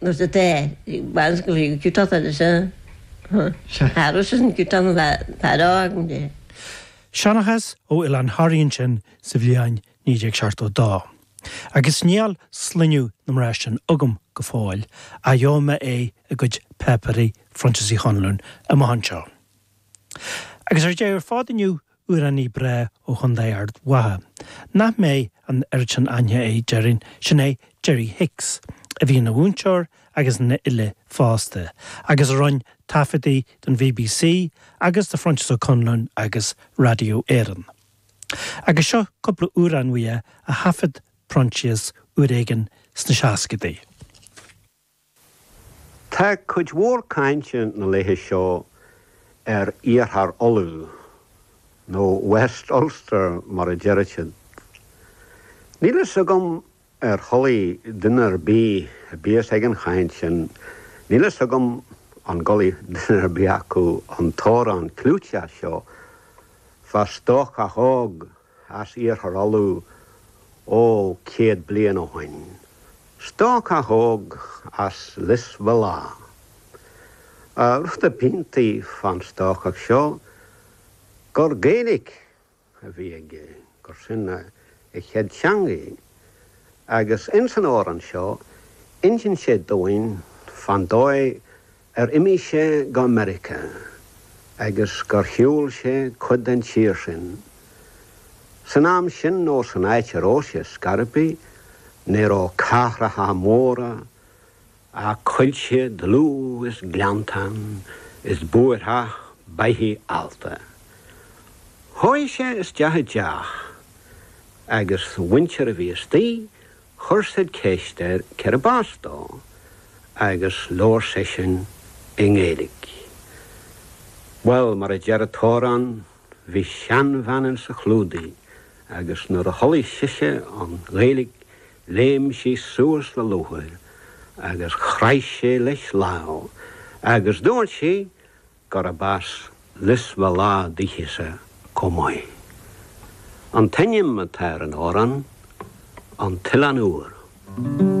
nó sa tae, baineann siad go fiú ciotóg anois a tharraingt as an gciotán a bheith ag faire a fhágann di. Seanchas ó Oileán Thoraí ansin sa bhliain 1972. Agus níl sloinneadh na mná sin agam go fóill, ach gheobhaidh mé é i gcuid páipéirí Phroinsias Uí Chonluain amach anseo. Agus ar deireadh ar fad inniu Amhránaí breá ó Chontae Ard Mhacha, nach mbeidh an oiread sin aithne air déarfainn, sin é Jerry Hicks, a bhí ina mhúinteoir agus ina fhile fosta, agus a rinn taifeadtaí don bbc agus do Phroinsias Ó Conluain agus Radio Éireann. Agus seo cúpla amhrán uaidh a thaifead Proinsias uair éigin sna seascaidí. Tá cuid mhór cainte na laethe seo ar Iarthar Uladh, nó West Ulster mar a deireadh siad. Níl fhios agam ar chualaigh duine ar bith a bíos ag an chaint sin, níl fhios agam an gcualaigh duine ar bith acu an t-amhrán clúiteach seo, fá stócach óg as Iarthar Uladh ó céad bliain ó shoin, stócach óg as Lios Bhéal Átha. Rud ab iontaí fán stócach seo gur Gaeilic a bhí aige, gur sin a chéad teangaidh, agus ins an amhrán seo inseann sé dúinn fán dóigh ar imigh sé go Meiriceá agus gur shiúl sé cuid den tír sin. San am sin nó san áit a raibh sé ar scor ar bith, ní raibh cathracha móra ach coillte dlúth is gleanntáin is búirtheach beithíoch allta. Chuaigh sé isteach i dteach agus an mhuintir a bhí astoigh Chuir siad ceist air cérb as dó agus labhair seisean i nGaeilic. Bhuel, mar a deir an t-amhrán, bhí seanbhean insa chlúdaigh agus nuair a chualaigh sise an Ghaeilic léim sí suas le lúcháir agus chraith sí leis lámh agus dúirt sí, gurb as Lios Bhéal Átha dithese chomh maith an t-ainm atá ar an amhrán, An tOileán Úr.